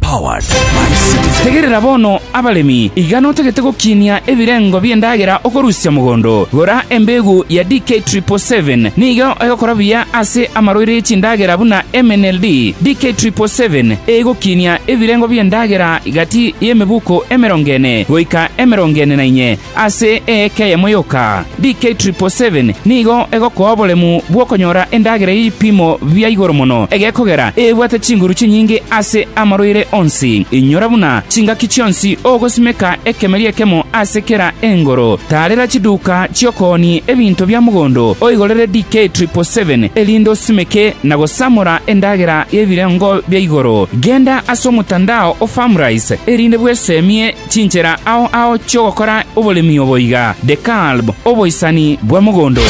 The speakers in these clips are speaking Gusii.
Powered by Citizen. Tegerera bono, abaremi, iga notagete gokinia ebirengo bi'endagera okorusia mogondo. Gora embegu ya DK 777, nigo egokora buya ase amaroiri e chindagera buna MNLD. DK 777 egokinia ebirengo bi'endagera gati y'emebuko emerongo ene goika emerongo ene na inye, Ase eeka eyemo yoka, DK777 nigo egokoa oboremu bw'okonyora endagera y'ebipimo bia igoro mono egekogera ebwate chinguru chinyinge ase amarwaire onsi. Inyora buna chingaki chionsi ogosimeka ekemeri ekemo ase kera engoro. Taarera chiduka chi'okoonia ebinto bia mogondo oigorere DK777 erinde osimeke na gosamora endagera y'ebirengo bia igoro. Genda ase omotandao o Farmrise erinde bwesemie Chinchera ao ao chi'ogokora oboremi obo iga, Dekalb, oboisani bwa mogondo.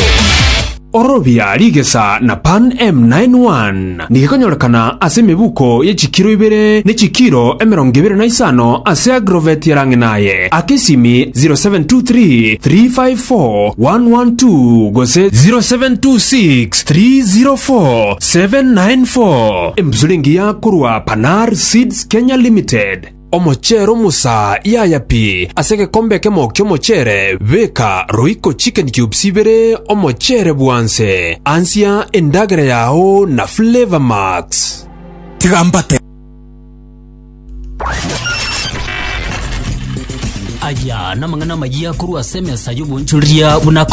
Orobia rigesa na pan M91 nigekonyorekana ase emebuko ye chikiro ibere ne chikiro emerongo ibere na isano ase agrovet ya Rang'inaye aka esimi 0723 354 112 gose 0726 304 794 Embusuri engiya korwa Panar Seeds Kenya Limited. Omocheere omosa yaya pi ase egekombe ekemo ki'omocheere, beka roiko chicken cubes ibere omocheere bwanse, ansia endagera yao na Flavour Max. Tiga mbate. Aya namang'ana amayia korwa ase emesa y'oboonchoreria buna akore.